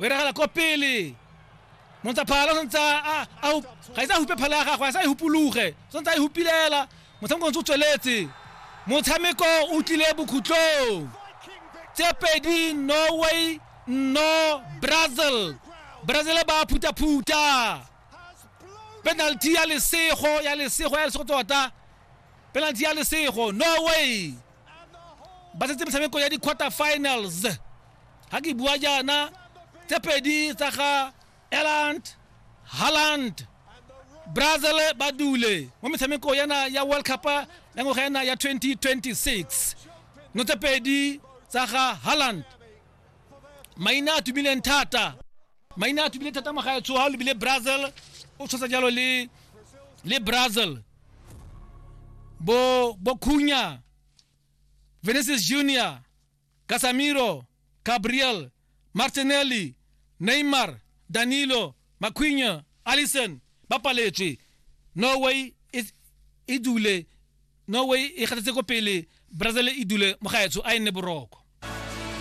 o iragala ko pele montshaphala o santse ga isa hupe phala ya gagwe a sa e hupologe o santse a e hupilela motshameko ntse o tsweletse motshameko o tlile bokhutlong tse pedi norway no brazil brazil ba phutha-phutha penalty ya lesego ya lesego ya lesego tota penalty ya lesego norway ba setse metshameko ya di-quarter finals ga ke bua jaana tse pedi tsa ga eland halland brazil ba dule mo metshameko yana ya world cup ya ngwaga yana ya 2026 no tse pedi tsa ga halland maina a tumileng thata maina a tumileng thata magaetsho ga o lebile brazil o tshosa jalo le le brazil bo bokhunya Vinicius Junior, Casemiro, Gabriel, Martinelli, Neymar, Danilo, Maquinha, Allison ba paletswe. Norway e e dule Norway e gatetse ko pele Brazil e dule mo gaetsho a e nne boroko.